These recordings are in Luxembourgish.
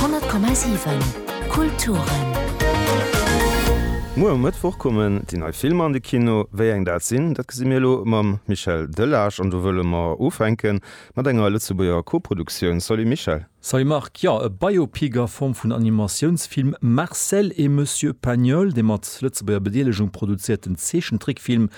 100,7 Kulturen. Muer um Mëttwoch kommen déi nei Filmer an de Kino. Wéi eng dat sinn, dat gesi mir elo mam Michel Delage an do wëlle mer ufänke mat enger Lëtzebuerger Koproduktioun. Salut Michel. Salut Marc. Jo, e Biopic a Form vun Animatiounsfilm, Marcel et Monsieur Pagnol, dee mat Lëtzebuerger Bedeelegung produzéierten Zeechentrickfilm,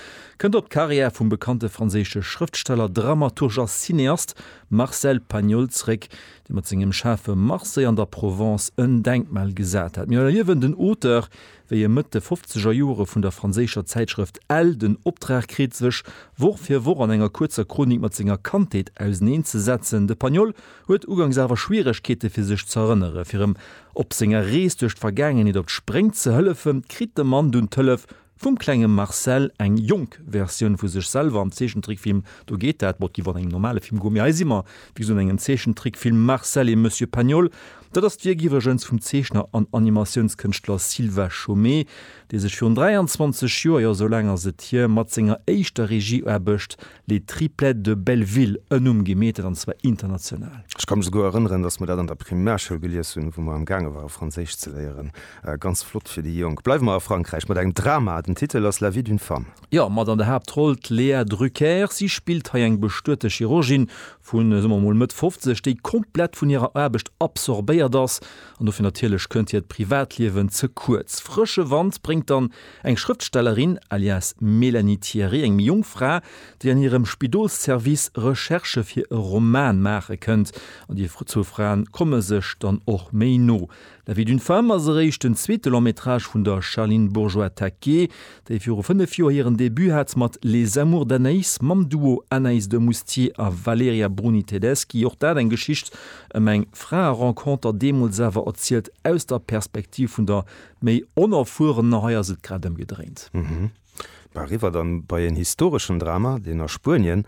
kënnt op d'Karriär vum bekannte franséische Schrëftsteller, Dramaturg a Cineast. Marcel Pagnol zréck, dee mat sengem schaarfe Marseille an der Provence en Denkmal gesat hat. Mir erliewen den Auteur, wéi e Mëtt de fofzeger Jore vun der franséischer Zäitschrëft Elle den Optrag kritt, sech Woch fir Woch an enger kuerzer Chronik mat senger Kandheet auseneen ze setzen. De Pagnol huet ugangs awer Schwieregkeete fir sech z'erënneren. Fir em op senger Rees duerch d'Vergaangenheet op d'Spréng ze hëllefen, kritt de Mann dunn d'Hëllef Vum klenge Marcel, eng jonk Versioun vu sech selwer am Zeechentrickfilm Do geet dat, bon, et géif och an engem normale Film goen, mee hei si mer, wéi gesot, an engem Zeechentrickfilm, Marcel et Monsieur Pagnol. Dat ass d'Wierk iwwregens vum Zeechner an Animatiounskënschtler Sylvain Chomet, dee sech virun 23 Joer, jo esou laang ass et hier, mat senger éischter Regieaarbecht Les Triplettes de Belleville, en Numm gi metet, an zwar international. Ech ka mech souguer erënneren, datt mer dat an der Primärschoul gelies hunn, wou mer am gaange ware Franséisch ze léieren. Ganz flott fir déi Jonk. Bleiwe mer a Frankräich mat engem Drama. Den Titel ass La vie d'une femme. Jo, mat an der Haaptroll d'Léa Drucker. Si spillt hei eng bestuete Chirurgin vu, soe mer emol, Mëtt 50, déi komplett vun hirer Aarbecht absorbéiert ass. An dofir natierlech kënnt hiert Privatliewen ze kuerz. Frësche Wand bréngt dann Eng Schrëftstellerin, alias Mélanie Thierry, eng méi jonk Fra, déi an hirem Spidolsservice Recherchë fir e Roman maache kënnt, an déi zwou Frae komme sech dann och méi no. La vie d'une femme ass eréischt den zweete Long-métrage vun der Charline Bourgeois-Taquet, déi viru fënnef Joer hiren Debut hat mat Les amours d'Anaïs mam Duo Anaïs de Moustier a Valerija Bruni-Tedeschi, och dat eng Geschicht ëm eng Fraerenconter, deemools awer erzielt aus der Perspektiv vun der Méi Onerfuerener, hei ass et grad ëmgedréint. Mhm. Mä eriwwer dann bei een historeschen Drama, deen a Spuenien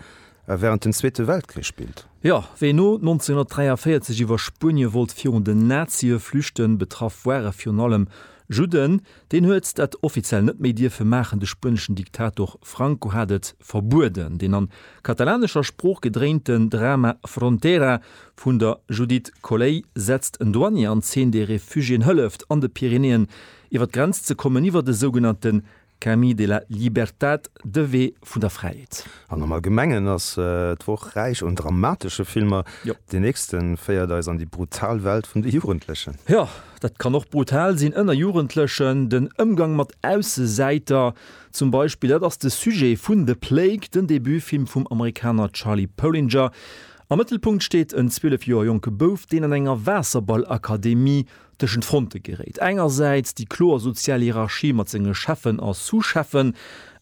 a während dem Zweete Weltkrich spillt. Jo, ween no 1943 iwwer Spuenie wollt virun den Nazie flüchten, betraff ware virun allem Judden, deen huet dat offiziell net méi dierfe maachen. De spueneschen Diktator Franco hat et verbueden. Deen an katalanescher Sprooch gedréinten Drama Frontera Vun der Judith Colley setzt en Douanier an Zeen, dee Refugiéen hëlleft, an de Pyrenäen iwwer d'Grenz ze kommen, iwwer de sougenannte Camí de la Libertad, de Wee vun der Fräiheet. An am Allgemengen ass d'Woch räich un dramatesche Filmer. Deen nächste féiert eis an déi brutal Welt vun de Jugendlechen. Jo, dat kann och brutal sinn ënner Jugendlechen, den Ëmgang mat Aussesäiter zum Beispill. Dat ass de Sujet vun The Plague, den Debutfilm vum Amerikaner Charlie Pölinger. Am Mëttelpunkt steet en 12 Joer jonke Bouf, deen an enger Waasserballakademie tëschent Fronte geréit, engersäits déi kloer sozial Hierarchie mat senge Cheffen a Sous-Cheffen,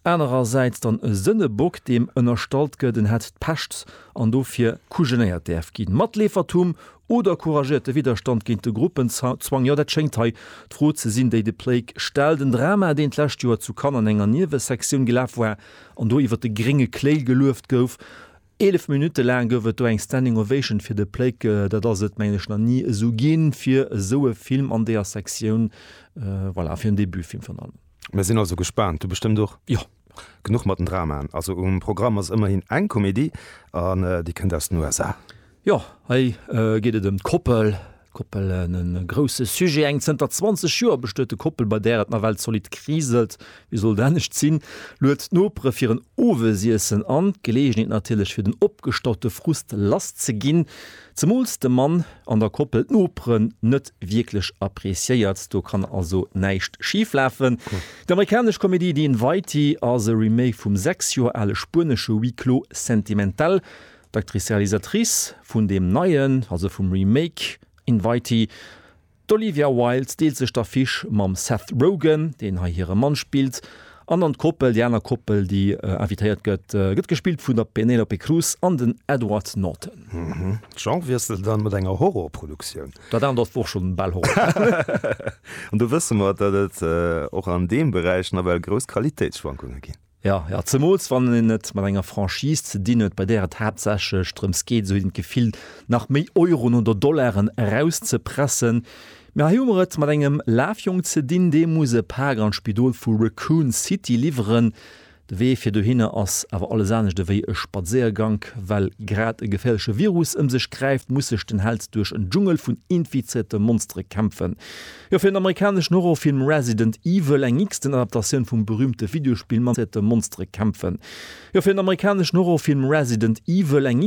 anerersäits dann e Sënnebock, deem ënnerstallt gëtt, en hätt d'Pescht an dofir kujenéiert däerf ginn. Matleefertum oder couragierte Widderstand géint de Gruppenzwang, jo, dat schéngt hei d'Fro ze sinn, déi de Plake stellt. En Drama, deen d'lescht Joer zu Cannes an enger Niewesektioun gelaf war an do iwwer de grénge Kléil gelueft gouf. Eelef Minutte laang gouf et do eng Standing Ovation fir de Pléck. Dat ass et, mengen ech, nach ni esou ginn, fir esou e Film an deeër Sektioun, voilà, fir en Debutfilm virun allem. Mir sinn also gespaant. Du bestëmmt och? Jo. Genuch mat den Dramaen. Also um Programm ass ëmmerhin eng Komedie, an déi kënnt aus den USA. Jo, hei geet et ëm d'Koppel. Koppel, e grousse Sujet. Eng zënter 20 Joer bestuete Koppel, bei där et nawell zolidd kriselt, wéi sollt et anescht sinn, luet d'Nopere fir en Owesiessen an. D'Geleegenheet natierlech, fir den opgestaute Frust lass ze ginn, zemools de Mann an der Koppel d'Noperen net wierklech appreciéiert. Do kann also näischt schif lafen. Déi amerikanesch Komedie The Invitee ass e Remake vum sechs Joer ale spuenesche Huis clos sentimental D'Actrice-Realisatrice vun deem neien, also vum Remake Invitee, d'Olivia Wilde deelt sech d'Affiche mam Seth Rogen, deen hei hire Mann spillt, an an d'Koppel, déi aner Koppel, déi invitéiert gëtt, gëtt gespillt vun der Penelope Cruz an den Edward Norton. Genre wiessel dann mat enger Horror-Produktioun. Dat anert ass och schonn bal Horror. An do wësse mer, datt et och an deem Beräich nawell grouss Qualitéitsschwankunge ginn. Jo, jo, zemools wann een et mat enger Franchise ze dinn huet, bei där et haaptsächlech drëms geet, esou huet een d'Gefill, nach méi Euroen oder Dollaren erauszepressen. Mä hei hu mer et mat engem Lafjong ze dinn, dee muss e Pak an d'Spidol vu Raccoon City liwweren. De Wee fir dohinner ass awer alles anescht ewéi e Spadséiergank. Well grad e geféierleche Virus ëm sech gräift, muss sech den Held duerch en Dschungel vun infizéierte Monstere kämpfen. Jo, fir den amerikaneschen Horrorfilm Resident Evil, eng xten Adaptatioun vum berüümte Videospill mat Monstere kämpfen. Jo, fir den amerikaneschen Horrorfilm Resident Evil, eng.